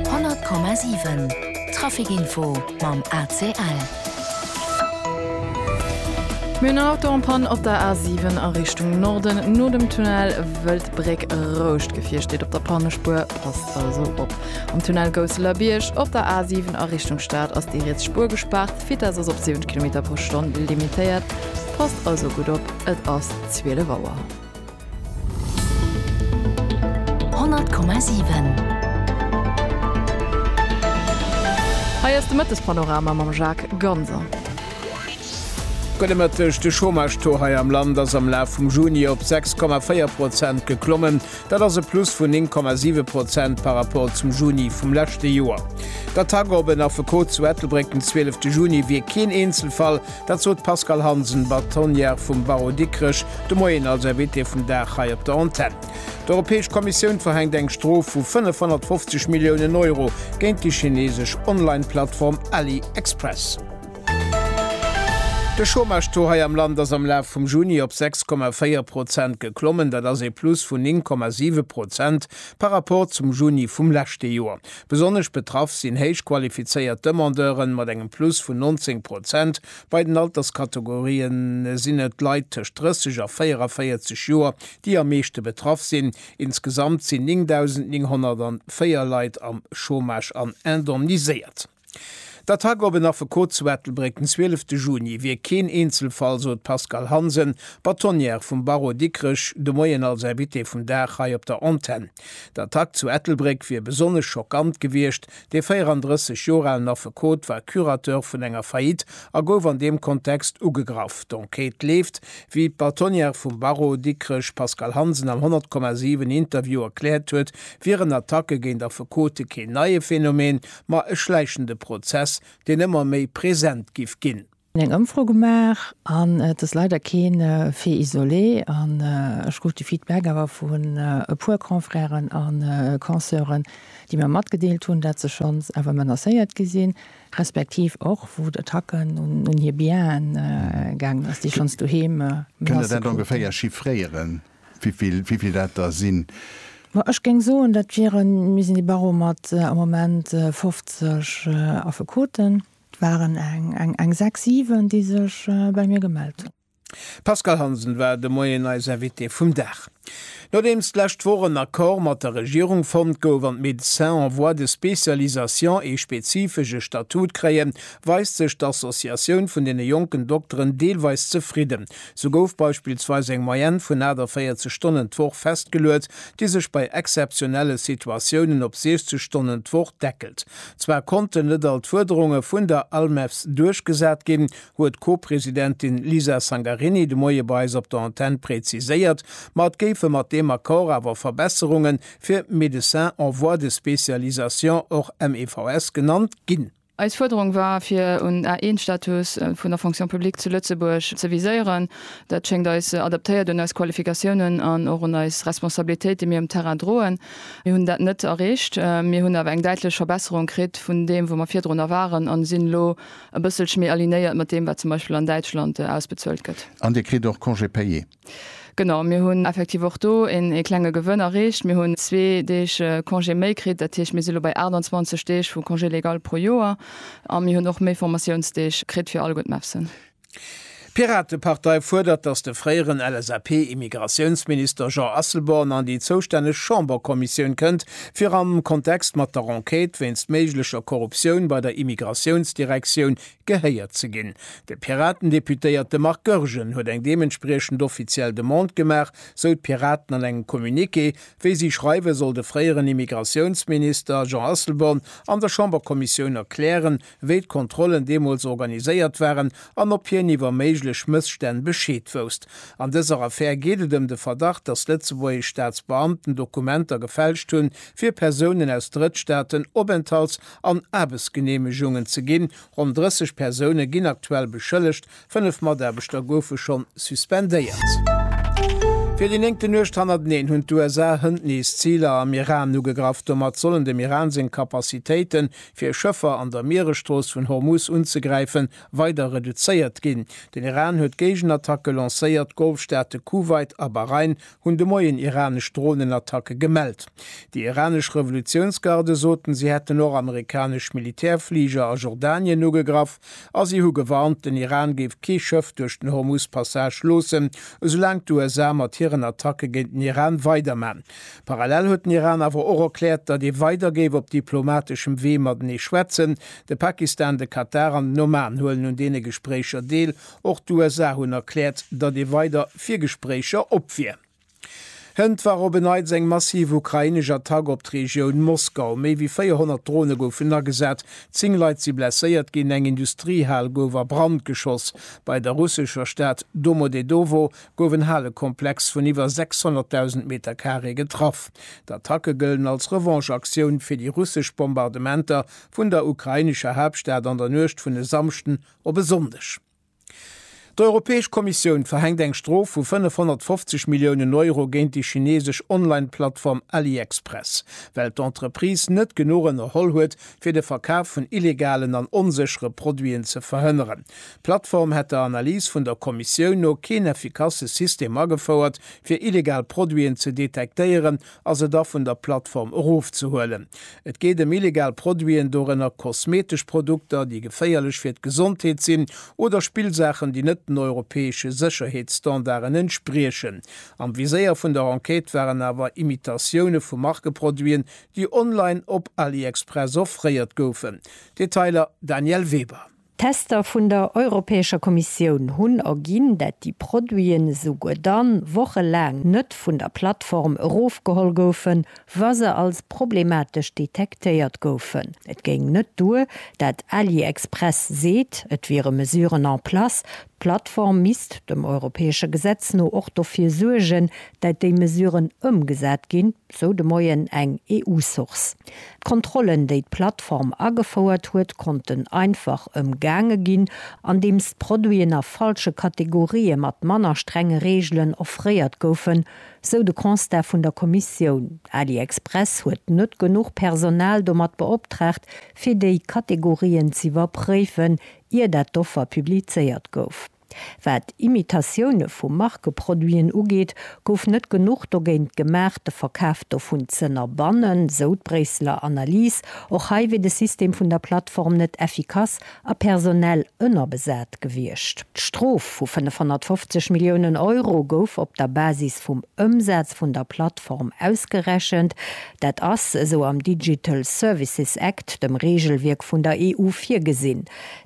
100,7 Trafic-Info mam ACL. Mir hunn en Auto en panne op der A7 a Richtung Norden no dem Tunnel Wëldbréck. Rouscht Gefier steet op der Pannespuer, passt also op. Am Tunnel Gousseler-Bierg op der A7 a Richtung Stad ass déi riets Spuer gespaart. D'Vitess ass op 70 Kilometer pro Stonn limitéiert, passt also gutt op, et ass 12 Auer. 100,7. Hei ass de Mëttespanorama mam Jacques Ganser. Gudde Mëtteg, De Chômage-Taux hei am Land ass am Laf vum Juni op 6,4 Prozent geklommen. Dat ass e Plus vun 9,7 Prozent par Rapport zum Juni vum leschte Joer. D'Attack op en Affekot zu Ettelbréck den 12 Juni wier keen Eenzelfall. Dat sot d'Pascale Hansen, Bâtonnière vum Barreau Dikrech, de Moien als Invitée vum Dag hei op der Antenn. D'Europäesch Kommissioun verhänkt eng Strof vu 550 Milliounen Euro géint déi chinesesch Online-Plattform AliExpress. De Chômage-Taux hei am Land ass am Laf vum Juni op 6,4 Prozent geklommen. Dat ass ee Plus vun 9,7 Prozent par rapport zum Juni vum leschte Joer. Besonnesch betraff sinn héich qualifizéiert Demandeuren mat engem Plus vun 19 Prozent. Bei den Alterskategorie sinn et d'Leit tëscht 30 a 44 Joer, déi am meeschte betraff sinn. Insgesamt sinn 9.904 Leit am Chômage an indemniséiert. D'Attack op en Affekot zu Ettelbréck den 12 de Juni wier keen Eenzelfall, sot d'Pascale Hansen, Bâtonnière vum Barreau Dikrech, de Moien als Invitée vum Dag hei op der Antenn. D'Attack zu Ettelbréck wier besonnesch schockant gewiescht, dee 34 Joer alen Affekot war Curateur vun enger Faillite a gouf an deem Kontext ugegraff. D'Enquête leeft, wéi d'Bâtonnière vum Barreau Dikrech Pascale Hansen am 100,7 Interview erkläert huet, wieren Attacke géint Affekote keen neie Phänomen, ma e schläichende Prozess, deen ëmmer méi present giff ginn. Mir hunn eng Ëmfro gemaach an et ass leider kee Fait isolé an ech krut de Feedback awer vun e puer Confrèren a Conseuren, déi mir matgedeelt hunn, dat se schonns awer menacéiert gi sinn, respektiv och wou d'Attacken un hir Bienen gaangen ass, déi schonns doheem Menacë kruten. Kënnt Der dat ongeféier chiffréieren, wéi vill dat der sinn? Ma ech géing soen, dat wieren, mir sinn e Barreau mat am Moment 50 Affekoten, Et waren eng sechs, siwen, déi sech bei mir gemellt hunn. D'Pascale Hansen war de Moien eis Invitée vum Dag. Nodeems d'lescht Woch en Accord mat der Regierung fonnt gouf an d'Médecins en voie de spécialisation ee spezifesche Statut kréien, weist sech d'Associatioun vun deene jonken Dokteren deelweis zefridden. Sou gouf beispillsweis eng Moyenne vun 48 Stonnen d'Woch festgeluet, déi sech bei exzeptionelle Situatiounen op 60 Stonnen d'Woch deckelt. Zwar konnten net all d'Fuerderunge vun der ALMEVS duerchgesat ginn, huet d'Co-Presidentin Lisa Sangarini de Moie bei eis op der Antenn präziséiert, ma et géife mat deem Accord awer Verbesserunge fir Médecins en voie de spécialisation, och MEVS genannt, ginn. Eis Fuerderung war, fir un d'A1-Status vun der Fonction publique zu Lëtzebuerg ze viséieren. Dat schéngt eis adaptéiert un eis Qualifikatiounen an och un eis Responsabilitéit, déi mir um Terrain droen. Mir hunn dat net erreecht. Mir hunn awer eng däitlech Verbesserung kritt vun deem, wou mer virdrunner waren, a sinn elo e bësselche méi alignéiert mat deem, wat zum Beispill an Däitschland ausbezuelt gëtt. An Dir kritt och Congé payé? Genau, mir hunn effektiv och do een klenge Gewënn erreecht. Mir hunn zwee Deeg Congé méi kritt. Dat heescht, mir si elo bei 28 Deeg vu Congé légal pro Joer. A mir hunn och méi Formatiounsdeeg kritt fir all gutt MEFSen. D'Piratepartei fuerdert, datt de fréieren LSAP-Immigratiounsminister Jean Asselborn an déi zoustänneg Chamberkommissioun kënnt, fir am Kontext mat der Enquête wéinst méiglecher Korruptioun bei der Immigratiounsdirektioun gehéiert ze ginn. De Piraten-Deputéierte Marc Goergen huet eng deementspriechend offiziell Demande gemaach, sou d'Piraten an engem Communiqué. Wéi si schreiwen, soll de fréieren Immigratiounsminister Jean Asselborn an der Chamberkommissioun erklären, wéi d'Kontrollen deemools organiséiert waren an ob hien iwwer méiglech Mësstänn Bescheed wousst. An dëser Affär geet et ëm de Verdacht, dass lëtzebuergesch Staatsbeamten Dokumenter gefälscht hunn, fir Persounen aus Drëttstaaten Openthalts an Aarbechtsgeneemegungen ze ginn. Ronn 30 Persoune ginn aktuell beschëllegt, Fënnef Mataarbechter goufe schonn suspendéiert. Fir déi néngte Nuecht hannerteneen hunn d'USA hënt nees Ziler am Iran ugegraff. Domat sollen dem Iran seng Capacitéite fir Schëffer an der Mieresstrooss vun Hormuz unzegräife weider reduzéiert ginn. Den Iran huet Géigenattacke lancéiert, d'Golfstaate Kuwait a Bahrain hunn de Moien iranesch Dronenattacke gemellt. Déi iranesch Revolutiounsgarde soten, si hätten och amerikanesch Militärfliger a Jordanien ugegraff a si hu gewarnt, den Iran géif kee Schëff duerch den Hormuz-Passage loossen, esoulaang d'USA mat hiren Attacke géint den Iran weiderman. Parallel huet den Iran awer och erkläert, datt ee weider géif op diplomateschem Wee matenee schwätzen. De Pakistan, de Katar an den Oman huelen un deene Gespréicher deel. Och d'USA hunn erkläert, datt ee weider fir Gespréicher op wier. Hënt war op en Neits eng massiv ukrainesch Attack op d'Regioun Moskau. Méi wéi 400 Drone goufen agesat, zéng Leit si blesséiert ginn, eng Industriehal gouf a Brand geschoss. Bei der russescher Stad Domodedowo gouf en Halekomplex vun iwwer 600.000 Meterkaree getraff. D'Attacke gëllen als Revanche-Aktioun fir déi russesch Bombardementer vun der ukrainescher Haaptstad an der Nuecht vun e Samschden Op e Sonndeg. D'Europäesch Kommissioun verhänkt eng Strof vu 550 Milliounen Euro géint déi chinesesch Online-Plattform AliExpress, well d'Entreprise net genuch ënnerholl huet, fir de Verkaf vun illegalen an onséchere Produiten ze verhënneren. D'Plattform hätt der Analys vun der Kommissioun no keen effikasse System agefouert, fir illegal Produiten ze detektéieren a se da vun der Plattform erofzehuelen. Et geet ëm illegal Produiten, dorënner kosmetesch Produkter, déi geféierlech fir d'Gesondheet sinn, oder Spillsaachen, déi net den europäesche Sécherheetsstandarden entspriechen. Am Viséier vun der Enquête waren awer Imitatioune vu Markeproduiten, déi online op AliExpress offréiert goufen. Detailer, Danièle Weber. D'Tester vun der Europäescher Kommissioun hunn erginn, dat déi Produiten esouguer dann wochelaang net vun der Plattform erofgeholl goufen, wa se als problematesch detektéiert goufen. Et géing net duer, dat AliExpress seet, et wiere Mesuren en place. D'Plattform misst dem europäesche Gesetz no och dofir suergen, dat déi Mesuren ëmgesat ginn. sou de Moien eng EU-Source. D'Kontrollen, déi d'Plattform agefouert huet, konnten einfach ëmgaange ginn, andeems d'Produiten a falsche Kategorië mat manner strenge Reegelen offréiert goufen, sou de Constat vun der Kommissioun. AliExpress huet net genuch Personal domat beoptraagt, fir déi Kategorien z'iwwerpréifen, ier dat d'Offer publizéiert gouf. Wat Imitatioune vu Markeproduiten ugeet, gouf net genuch dogéint gemaach, de Verkaf dovun z'ënnerbannen, sou d'Bréisseler Analys. Och hei wier de System vun der Plattform net effikass a personell ënnerbesat gewiescht. D'Strof vu 550 Milliounen Euro gouf op der Basis vum Ëmsaz vun der Plattform ausgerechent. Dat ass, esou am Digital Services Act, dem Reegelwierk vun der EU, virgesinn.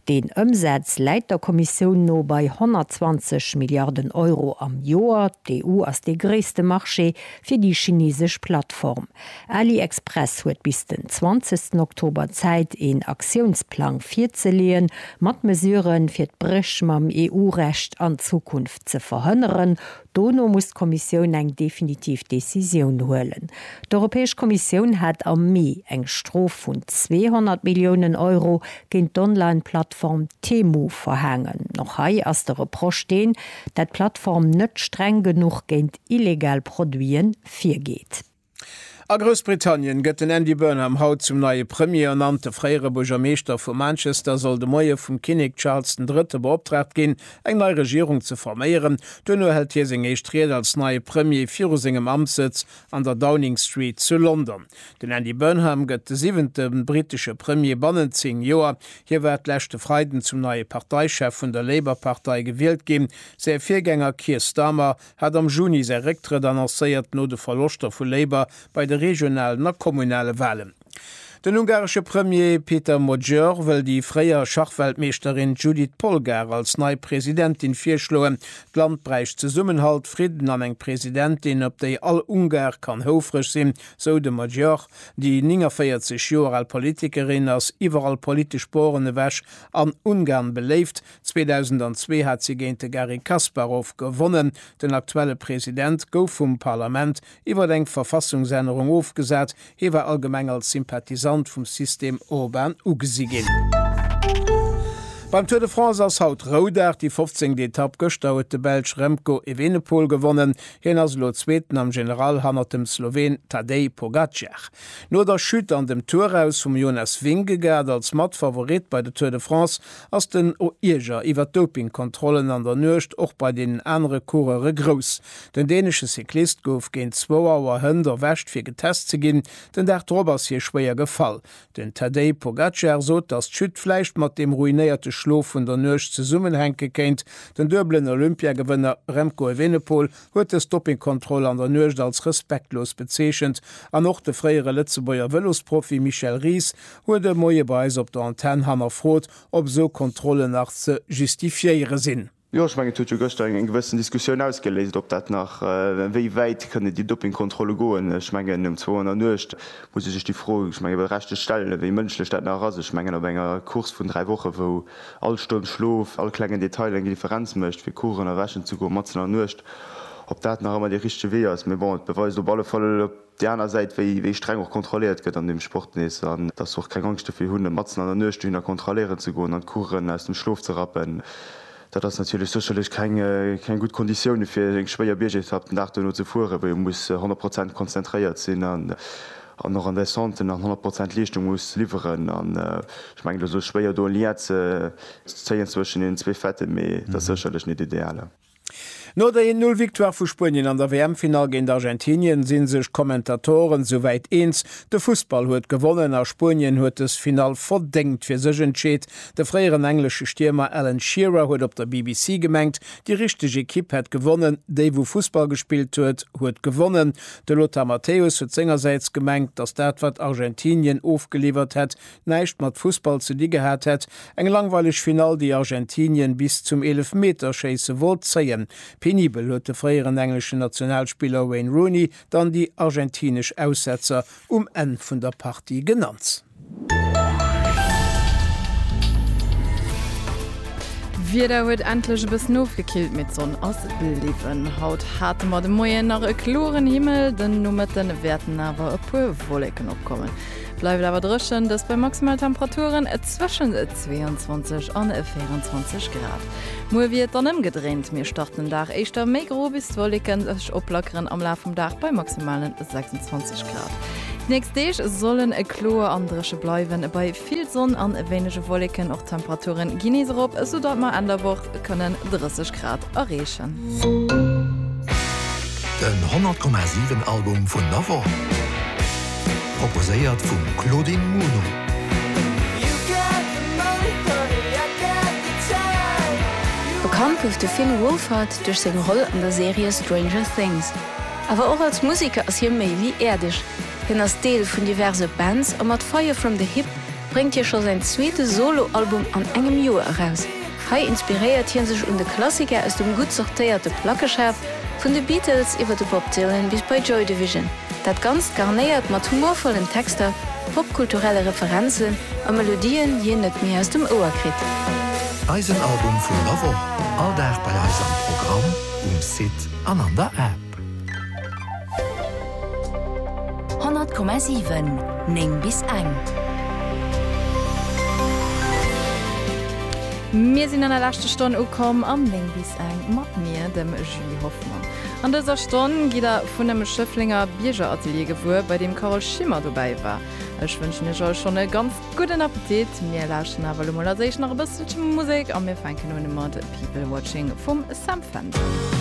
Deen Ëmsaz läit der Kommissioun no bei 120 Milliarden Euro am Joer. D'EU ass dee gréisste Marché fir déi chinesesch Plattform. AliExpress huet bis den 20 Oktober Zäit een Aktiounsplang virzeleeën, mat Mesuren, fir d'Bréch mam EU-Recht an Zukunft ze verhënneren, Dono muss d'Kommissioun eng definitiv Decisioun huelen. D'Europäesch Kommissioun hat am Mee eng Strof vun 200 Milliounen Euro géint d'Online-Plattform Temu verhaangen. Och hei ass de Reproche deen, dat d'Plattform net streng genuch géint illegal Produite virgeet. A Groussbritannien gëtt den Andy Burnham haut zum neie Premier ernannt. De fréiere Buergermeeschter vu Manchester soll de Moie vum Kinnek Charles den Drëtte beoptraagt ginn, eng nei Regierung ze forméieren. Duerno hält hie seng éischt Ried als neie Premier viru sengem Amtssëtz an der Downing Street zu London. Den Andy Burnham gëtt de siwente brittesche Premier bannent zéng Joer. Hie war d'leschte Freiden zum neie Parteichef vun der Labour-Partei gewielt ginn. Säi Virgänger Keir Starmer hat am Juni säi Récktrëtt annoncéiert, no de Verloschter vu Labour bei de regionalen a kommunale Walen. Den ungaresche Premier Péter Magyar wëll déi fréier Schachweltmeeschterin Judit Polgár als nei Presidentin virschloen. D'Land bräicht Zesummenhalt, Fridden an eng Presidentin, op déi all Ungar kann houfreg sinn, sou de Magyar. Déi 49 Joer al Politikerin ass iwwerall politesch Poren ewech an Ungarn beléift. 2002 hat si géint de Garry Kasparov gewonnen. Den aktuelle President gouf vum Parlament iwwer eng Verfassungsännerung ofgesat. Hie war allgemeng als Sympathisant vum System Orban ugesi ginn. Beim Tour de France ass haut Roudag, déi fofzéngt Etapp. Gëschter huet de Belsch Remco Evenepoel gewonnen. Hien ass elo Zweeten am General hannert dem Sloween Tadej Pogacar. No der Chute an dem Tour aus vum Jonas Vingegaard als Matfavorit bei de Tour de France ass den Oierger iwwer d'Dopingkontrollen an der Nuecht och bei deenen anere Coureuere grouss. Den dänesche Cyclist gouf géint zwou Auer Hënt erwescht fir getest ze ginn. Den Dag drop ass hie schwéier gefall. Den Tadej Pogacar sot, datt d'Chute vläicht mat deem ruinéierte Schlof vun der Nuecht zesummenhänke kéint. Den duebelen Olympiagewënner Remco Evenepoel huet dës Doppingkontroll an der Nuecht als respektlos bezeechent an och de fréiere Lëtzebuerger Vëlosprofi Michel Ries huet e Moie bei eis op der Antenn hannerfrot, ob esou Kontrollen nach ze justifiéiere sinn. Jo, ech mengen, et huet jo gëschter eng gewëssen Diskussioun ausgeléist, ob dat nach, wéi wäit kënnen déi Doppingkontrolle goen. Ech mengen, um zwou an der Nuecht muss ee sech déi Fro, ech menge berechtegt stellen, wéi mënschlech dat nach ass. Ech mengen, op enger Course vun dräi Woche, wou. All Stonn Schlof, all klengen Detail eng Differenz mécht, fir Kuchen a wäschen ze goen matzen an der Nuecht, ob dat nach ëmmer dee richtege Wee ass. Mee bon, et beweist op alle Fall op där aner Säit, wéi streng och kontrolléiert gëtt an deem Sport nees, an dass se och keng Angscht dofir hunn, matzen an der Nuecht dohinner kontrolléieren ze goen an d'Kuchen aus dem Schlof ze rappen. Dat ass natierlech sécherlech keng gutt Konditioune fir eng schwéier Biergetapp den Dag duerno ze fueren, wou ee muss honnert Prozent konzentréiert sinn. an och an där Santé nach 100 Prozent Leeschtung muss liwweren an ech mengen et ass elo schwéier do en Lien ze zéien zwëschen deenen zwee Fêten, mee et ass sécherlech net ideal. No der 1, 0 Victoire vu Spuenien an der WM-Finall géint Argentinien si sech d'Kommentatoren souwäit eens, de Fussball huet gewonnen a Spuenien huet dës Finall verdéngt fir sech entscheet. De fréieren englesche Stiermer Alan Shearer huet op der BBC gemengt, déi richteg Ekipp hätt gewonnen, déi wou Fussball gespillt huet, huet gewonnen. De Lothar Matthäus huet sengersäits gemengt, datt dat wat Argentinien ofgeliwwert hätt, näischt mat Fussball ze di gehat hätt. Eng langweileg Finall, déi Argentinien bis zum Eelefmeterschéisse wollt zéien. Penibel huet de fréieren engleschen Nationalspiller Wayne Rooney dann déi argentinesch Aussetzer um Enn vun der Partie genannt. D'Wieder huet endlech e bëssen ofgekillt, mee d'Sonn ass bliwwen. Haut hate mer de Moien nach e kloren Himmel, den Nomëtte wäerten awer e puer Wolleken opkommen. Bleift awer dréchen, dëst bei Maximaltemperaturen zwëschen 22 an 24 Grad. Muer wier et dann ëmgedréint, mir starten den Dag éischter méi gro, bis d'Wolleke sech oplackeren am Laf vum Dag bei maximalen 26 Grad. D'nächst Deeg solle kloer an dréche bleiwen, bei vill Sonn an wéinege Wolleken. Och d'Temperature gi nees erop, soudatt mer Enn der Woch kënnen 30 Grad erreechen. Den 100,7 Album vun der Woch, proposéiert vum Claudine Muno. Bekannt gouf de Finn Wolfhard duerch seng Roll an der Serie Stranger Things, Awer och als Museker ass hie méi wéi äerdeg. Hien ass Deel vun diverse Bands a mat Fire From The Hip bréngt hie scho säin zweete Solo-Album an engem Joer eraus. Hei inspiréiert hie sech un de Klassiker aus dem gutt sortéierte Plackeschaf, vun de Beatles iwwer de Bob Dylan bis bei Joy Division. Dat Ganzt garnéiert mat humorvollen Texter, popkulturelle Referenzen a Melodien, déi een net méi aus dem Ouer kritt. Eisen Album vun der Woch, all Dag bei eis am Programm um Site. an an der App. 100,7 9 bis eng. Mir sinn an der leschte Stonn ukomm am 9 bis eng mat mir, dem Julie Hoffmann. An dëser Stonn gitt der vun em Schëfflenger Biergeratelier gewuer, bei deem Carole Schimmer dobäi war. Ech wënschen iech all schonn e ganz gudden Appetit. Mir lauschten awer elo mol als éischt nach e bësselche Musek a mir fänken un mat People Watching vum Sam Fender.